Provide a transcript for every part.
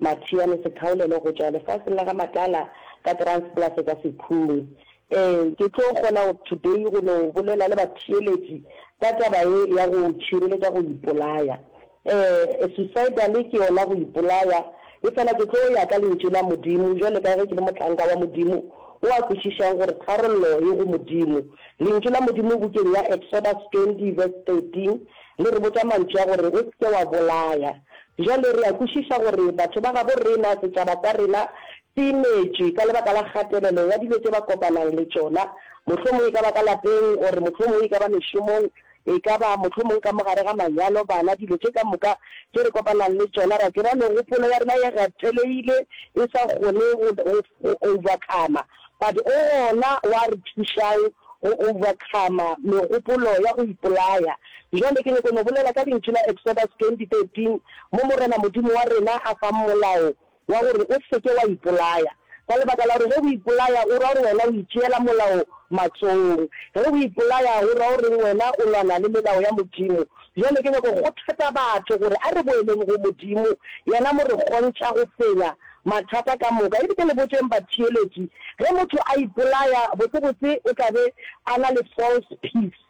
Mathiane Sekhaulele go tšwa lefaseng la ga Matala ka Transplace ka Sekhumi. Ee, ke tlo kgona today go no bolela le batheeletši ka taba ye ya go tšhireletša go ipolaya. Ee, suicidal ke yona go ipolaya, efela ke tlo ya ka Lentšu la Modimo bjale ka ge ke le motlanka wa Modimo o a kwešišang gore tharollo e go Modimo. Lentšu la Modimo bukeng ya Exodus 20 verse 13 le re botša mantšu a gore, O se ke wa bolaya. Bjale re a kwešiša gore batho ba gabo rena, setšaba sa rena, se imetšwe ka lebaka la kgatelelo ya dilo tše ba kopanang le tšona, mohlomong e ka ba ka lapeng, or mohlomong e ka ba mešomong, e ka ba mohlomong ka mo gare ga manyalo, bana, dilo tše ka moka tše re kopanang le tšona. Re a tseba megopolo ya rena e gatelegile, e sa kgone go, go, go overcome-a. but o gona wa re thušang go overcome megopolo ya go ipolaya. Bjale ke nyoko no bolela ka lentšu la Exodus 20:13 mo Morena Modimo wa rena a fang molao wa gore o seke wa ipolaya. Ka lebaka la gore ge o ipolaya o ra gore wena o itšeela molao matsogong. Ge o ipolaya go ra goreng wena o lwana le melao ya Modimo. Bjale ke nyaka go kgothatsa batho gore a re boeleng go Modimo, yena mo re kgontša go fenya mathata ka moka. E bile le botšeng batheeletši, ge motho a ipolaya, botsebotse o tla be a na le false peace.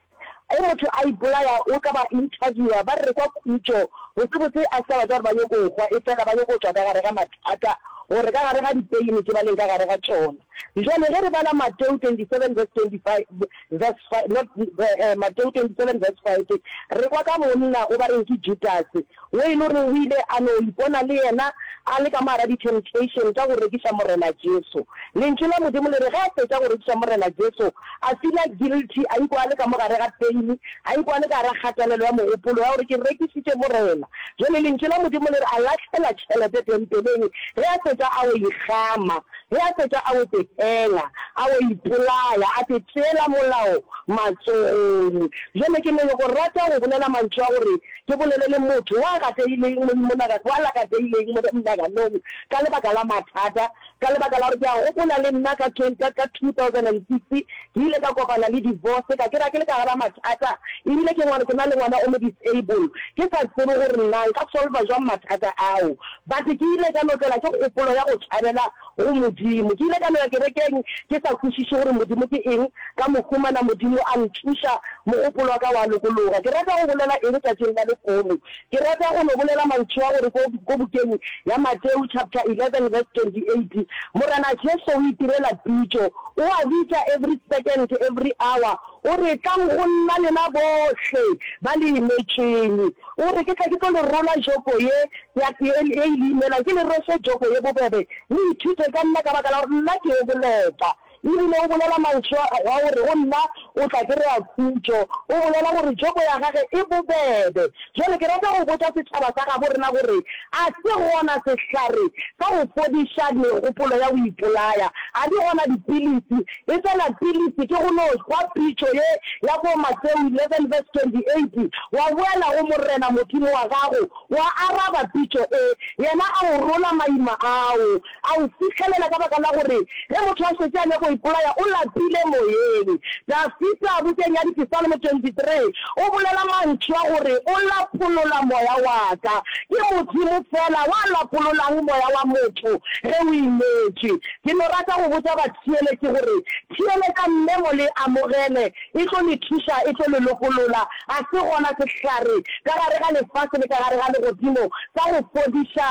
Ge motho a ipolaya, o ka ba interviewer, ba rekwa khutšo, botsebotse a se ka batla gore ba nyoko hwa, efela ba nyoko tšwa ka gare ga mathata, gore ka gare ga dipeine tše ba leng ka gare ga tšona. Bjale ge re bala Mateo 27 verse 25, verse 5, not the, eh, Mateo 27 verse 5, re kwa ka monna go ba reng ke Judase, wo e le gore o ile a no ipona le yena a le ka mogara di-temptation tša go rekiša Morena Jesu. Lentšu la Modimo le re ge a fetša go rekiša Morena Jesu, a feela guilty, a ikwa a le ka mogare ga pain, a ikwa a le ka gara kgatelelo ya mogopolo ya gore ke rekišitše Morena. Bjale Lentšu la Modimo le re a lahlela tšhelete tempeleng ge a fetša a o e kgama. Ge a fetša a otetela, a o ipolaya, a te tšeela molao matsogong. Bjale ke ne ke go rata go bolela mantšu a gore ke bolele le motho wa gateileng mo monaga, wa lakateileng mo monaganong ka lebaka la mathata, ka lebaka la gore ke a gopola le nna ka 2006 ke ile ka kopana le divorce ka kry-a ke le ka gara mathata ebile ke ngwana, ke na le ngwana o mo disable ke sa tsebe gore na nka solva jwang mathata ao. But ke ile ka no tlelwa ke kgopolo ya go tšhabela go Modimo. Ke ile ka no ya kerekeng ke sa kwešiše gore Modimo ke eng, ka mo humana Modimo a ntšuša, mogopolo wa ka wa lokologa. Ke rata go bolela eng tšatšing la lehono? Ke rata go no bolela mantšu a gore ko, ko bukeng ya Mateu chapter 11 verse 28, Morena Jesu o itirela pitšo. O a bitša every second, every hour. O re, Tlang go nna lena bohle ba le imetšeng. O re, Ke tla ke tlo le rola joko ye ya tee e e le imelang, ke le rwese joko ye bobebe, le ithute ka nna, ka baka la gore nna ke yo boleta. E rile o bolela mantšu a, a gore go nna o tla kry-a khutšo, o bolela gore joko ya gage e bobebe. Bjale ke rata go botša setšhaba sa gabo rena gore a se gona sehlare sa go fodiša megopolo ya go ipolaya? A di gona dipilisi Efela pilisi ke go no hwa pitšo ye ya bo Mateu 11 verse 28, Wa boela go Morena Modimo wa gago, wa araba pitšo e, yena a o rola maima ao, a o fihlelela ka baka la gore ge motho a šetše a nyako ipolaya o lapile moyeng. Dafida bukeng ya Dipisalmo 23 o bolela mantšu a gore o lapolola moya wa ka. Ke Modimo feela wa lapololang moya wa motho ge o imetše. Ke no rata go botša batheeletši gore, theeletša mme mo le amogele, e tlo le thuša, e tlo le lokolola. Ga se gona sehlare ka gare ga lefase le ka gare ga legodimo sa go fodiša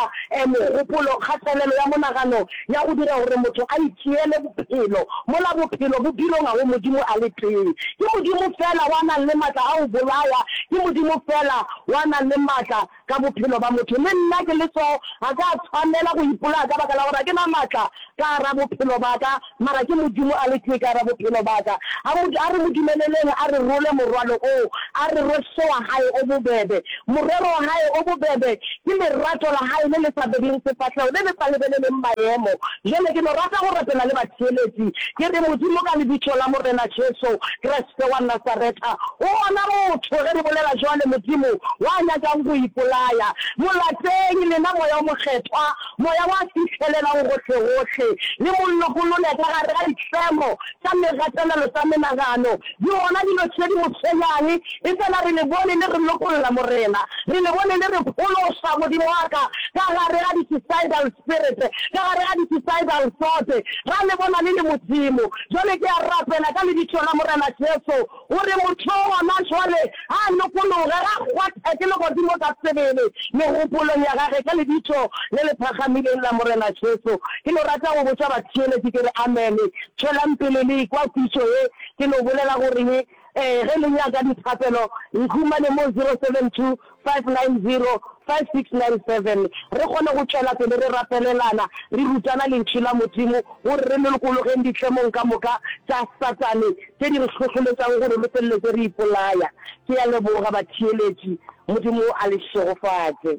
mogopolo, kgatelelo ya monagano ya go dira gore motho a itšeele bophelo, mola bophelo bo bilonga go Modimo a le tee. Ke Modimo feela wa nang le matla a go bolaya, ke Modimo feela wa nang le matla ka bophelo ba motho. Le nna ke le soo, ga ka tshwanela go ipolaya ka baka la gore ga ke na matla ka gara bophelo ba ka, mara ke Modimo a le tee ka gara bophelo ba ka. A mo, a re mo dumeleleng a re rwole morwalo oo, a re rwe hle wa Hae o bobebe. Morero wa Hae o bobebe ke lerato la Hae le le sa bebeng sefahlego, le le sa lebeleleng maemo. Bjale ke no rata go rapela le batheeletši, ke re, Modimo, ka Lebitso la Morena Jesu Kriste. Se wa Nasareta o gona motho, ge re bolela jwale, Modimo wa nyakang go ipolaya. Mo lateng, lena Moya o Mokgethwa, Moya wa fihlelelang gohlegohle, le Mo lokolole ka gare ga ditlemo tša megatelelo tša menagano. Di gona dilo tše di Mo tshwenyang, efela re Le bone le re lokolla, Morena. Re Le bone le re phološa, Modimo wa ka, ka gare ga di-suicidal spirit, ka gare ga di-suicidal thought. Ra Le bona le le Modimo. Jwale ke a rapela ka Lebitso la Morena Jesu, gore motho yo gona jwale a lokologe, a kgwathe ke legodimo ka sebele, megopolong ya gage, ka Lebitso le le phagamileng la Morena Jesu. Ke no rata go botša batheeletši, ke re, Amene. Tšwelang pele le ekwa pitšo ye. Ke no bolela gore ye. Ee, ge le nyaka dithapelo, nkhumane mo 072 590 5697 re kgone go tšwela pele re rapelelana, re rutana Lentšu la Modimo gore re lokologeng ditlemong ka moka tša Satane tše di re hlohloletšago gore re feleletse re ipolaya. Ke a leboga, batheeletši. Modimo a le šegofatše.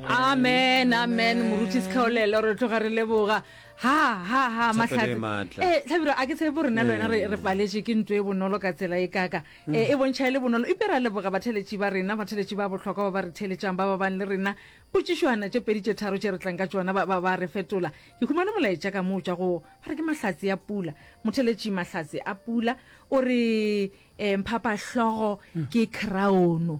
amen amen moruti sekgaolelo re tloga re leboga ha ha ha matlhatse eh tlhabiro a ke tshepo rena rena re re paletshe ke ntwe e bonolo ka tsela e kaka mm. eh, e bontšha e le bonolo ipe ra leboga batheletši ba rena batheletši ba bohlokwa ba ba re theletšang ba ba bang le rena potšišwana tše pedi tše tharo tše re tlang ka tšona ba ba re fetola ke humane molaetša ka moo tša go ba re ke mahlatse ya pula motheletši mahlatse a pula o re um phapahlogo mm. ke crown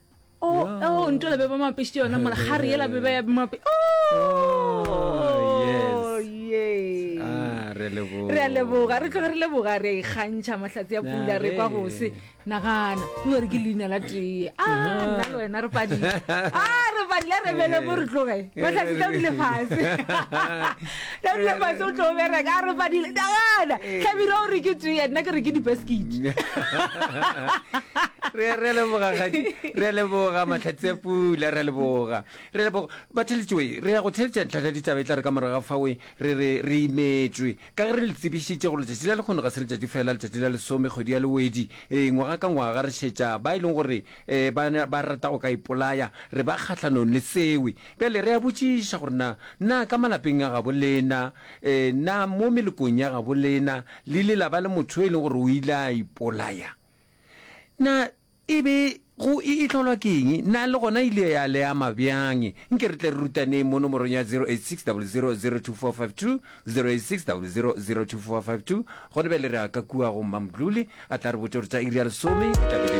o oh, oh, ntola be ba mapešitse yona mola ga re yela be ba ya mape re a leboga re tloge re leboga re a ikgantšha mahlatsi ya pula re kwa gose nagana o re ke leina la tee a nna le wena re padile a re padile re bele mo re tloge mahlatsi tla dile fase Tabile Pase o tlo bereka a re padile dagana Tabile o re ke tee nna ke re ke di-basket re re leboga gadi re leboga matlhatsi a pula re leboga re leboga batheletšoe re ya go theletša ntlhatla ditaba e tla re ka morago ga fawe re re re imetswe ka ge re le tsebišitše go letšatši la lekgono ga se letšatši fela letšatši la lesome kgwedi ya lewedi ee ngwaga ka ngwaga re šetša ba e leng gore um ba rata go ka ipolaya re ba kgahlanong le sewe Bjale re a botšiša gore na, na ka malapeng a gabo lena, e, na mo melokong ya gabo lena, le ile la ba le motho yo e leng gore o ile a ipolaya? Na e be go e, e tlholwa ke eng? Na le gona e ile ya le ama bjang? Nke re tle re rutaneng mo nomorong ya 0860002452, 0860002452. Gone bjale re a ka kua go Mmamdluli, a tla re botša gore tša iri ya lesome di tla be di le.